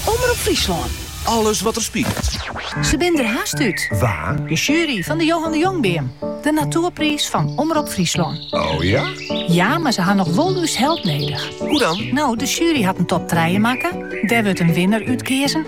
Omrop Fryslân, alles wat der spilet. Se binne der hast út. Wa? De sjuery fan de Johan de Jongbeam, de natoerpriis fan Omrop Fryslân. Oh ja? Ja, mar se ha noch wol ús help nedich. Hoe dan? No, de sjuery hat in top trije makke, dêr wurdt in winner útkeazen.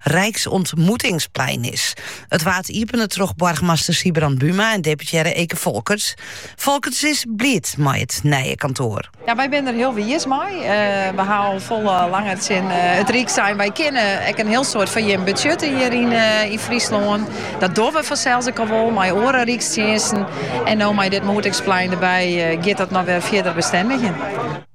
Rijksontmoetingsplein is. It waard iepene troch boargemaster Sybrand Buma en deputearre Eke Folkerts. Folkerts is bliid mei it nije kantoar. Ja, wy binne der hiel wiis mei. Eh, we ha al folle langer tsjin eh, it Ryk sein. Wy kinne ek in hiel soad foar jim betsjutte hjir yn, eh, yn Fryslân. Dat dogge we fansels ek al wol mei oare rykstsjinsten. En no mei dit moetingsplein derby eh, giet dat noch wer fierder bestendigjen.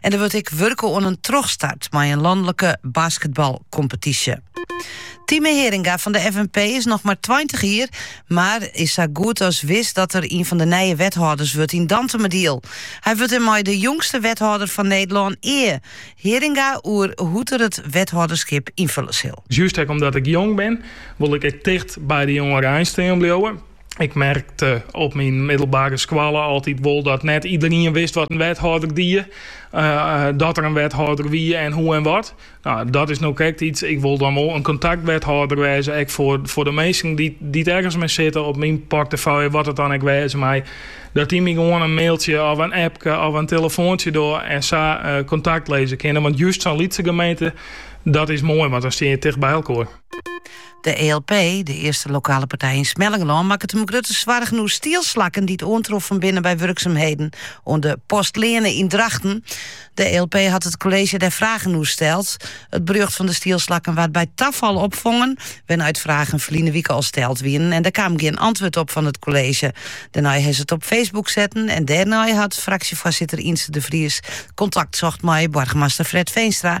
En der wurdt ek wurke oan in trochstart mei in lanlike basketbalkompetysje. Time Heringa fan de FNP is noch mar 20 jier, mar is sa goed as wis dat er ien fan de nije wethâlders wurdt yn Dantumadiel. Hy wurdt dêrmei de jongste wethâlder fan Nederlân. Ea. Heringa oer hoe't er it wethâlderskip ynfille sil. Just ek omdat ik jong bin, wol ik ek ticht by de jongerein stean bliuwe. Ik merkte op myn middelbare skoalle altyd wol dat net iederien wist wat in wethâlder die, eh, dat der in wethâlder wie en hoe en wat. No, dat is no krekt iets. Ik wol dan wol in kontaktwethâlder wêze, ek foar, foar de minsken dy't ergens mei sitte op myn portefeuille, wat it dan ek wêze mei, dat dy my gewoan in mailtsje of in appke of in telefoantsje dogge en sa eh, kontakt lizze kinne. Want just sa'n lytse gemeente, dat is moai, want dan stean je ticht by elkoar. De ELP, de earste lokale partij yn Smellingerlân, makket him grutte soargen oer stielslakken dy't oantroffen binne by wurksumheden oan de Postleane yn Drachten. De ELP hat it kolleezje dêr fragen oer steld. It berjocht fan de stielslakken waard by tafal opfongen, wêrnei't fragen ferline wike al steld wienen en der kaam gjin antwurd op fan it kolleezje. Dêrnei is it op Facebook setten en dêrnei hat fraksjefoarsitter Yntze de Vries kontakt socht mei boargemaster Fred Veenstra.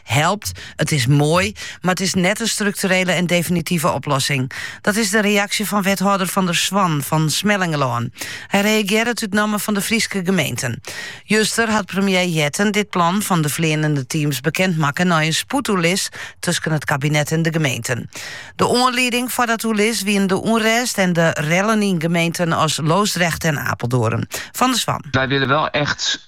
Helpt, it is moai, mar it is net in strukturele en definitive oplossing. Dat is de reaksje fan wethâlder Van der Zwan fan Smellingerlân. Hy reagearret út namme fan de Fryske gemeenten. Juster hat premier Jetten dit plan fan de fleanende teams bekend makke nei in spoedoerlis tusken it kabinet en de gemeenten. De oanlieding foar dat oerlis wiene de ûnrêst en de rellen yn gemeenten as Loosdrecht en Apeldoorn. Van der Zwan. Wij willen wel echt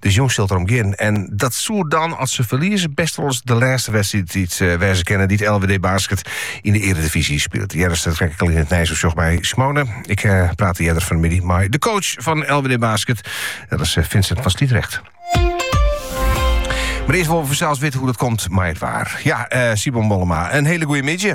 Dus jûn sil it derom gean. En dat soe dan, as se ferlieze, bêst wolris de lêste wedstriid eh, wêze kinne dy't LWD Basket yn de earedivyzje spilet. Jo hearden it strak ek al yn it nijsoersjoch by Simone. Ik eh, praatte earder fannemiddei mei de coach fan LWD Basket. Dat is eh, Vincent van Sliedregt. Mar earst wolle we fansels witte hoe't dat komt mei it waar. Ja, uh, Simon Mollema, in hiele goeie middei.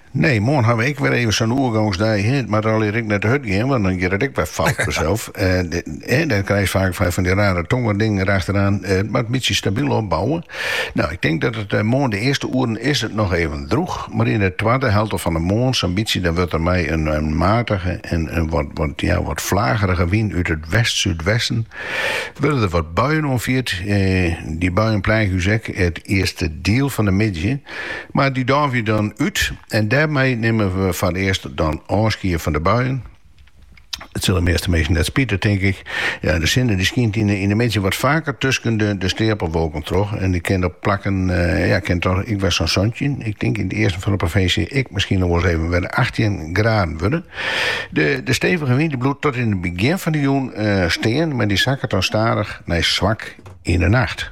Nee, moarn hawwe we ek wer even sa'n oergangsdei. It moat allegear ek net te hurd gean, want dan giet it ek wer fout fansels. Dan krijg je vaak fan die rare tongerdingen erachteraan. It moat in bytsje stabyl opbouwen. Nou, ik tink dat it moarn de earste oeren is it noch even drûch, mar yn de twadde helte fan de moarn sa'n bytsje, dan wurdt der mei in matige en in wat ja wat flagerige wyn út it west-súdwesten wurde der wat buien oanfierd. Die buien pleage ús ek it earste diel fan de middei. Mar dy't dan waaie dan út en dêrmei nimme we foarearst dan ôfskied fan de buien. It sil de measte minsken net spite, tink ik. Ja, de sinne dy skynt yn 'e middei wat faker tusken de steapelwolken troch en it kin op plakken ja, kin toch ek wer sa'n santjin. Ik tink yn it easten fan de provinsje ek miskien noch wolris even wer achttjin graden wurde. De de stevige wyn dy bliuwt tot yn it begjin fan de jûn stean, mar dy sakket dan stadich nei swak yn de nacht.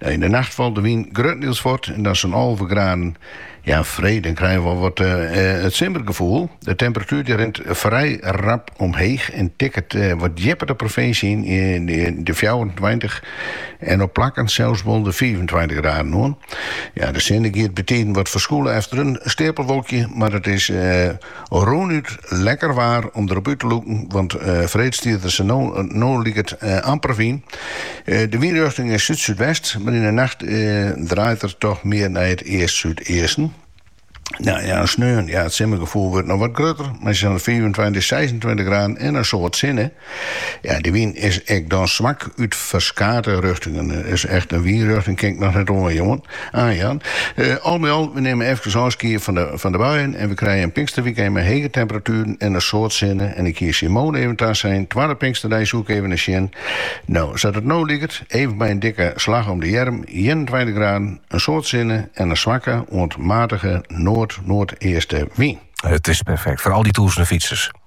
Nou, yn de nacht falt de wyn gruttendiels fuort en dat sa'n alve graden. Ja, freed, dan krije we wol wat it simmergefoel. De temperatuer die rint frij rap omheech en tikket wat djipper de provinsje yn, de fjouwerentweintich en op plakken sels wol de fiifentweintich graden oan. Ja, de sinne giet bytiden wat ferskûle efter in steapelwolkje, mar it is Rûnút lekker waar om derop út te lûken, want freed stiet der sa't no liket amper wyn. De wynrjochting is súd-súdwest, mar yn 'e nacht draait er toch mear nei it east-súdeasten. No ja, en sneon, ja, it simmergefoel wurdt noch wat grutter, maksimaal fiifentweintich, seisentweintich graden en in soad sinne. Ja, de wyn is ek dan swak út ferskate rjochtingen. Dus echt in wynrjochting kin ik noch net oanjouwen. Oanjaan. Eh, al by al, we nimme efkes ôfskied fan de, fan de buien en we krije in pinksterwikend mei hege temperatueren en in soad sinne en ik hie Simon even tasein twadde pinksterdei soe ik even nei sjen. No, sa't it no liket, even mei in dikke slach om de earm, ienentweintich graden, in soad sinne en in swakke oant matige noard-noardeaste wyn. It is perfekt foar al dy tûzenen fytsers.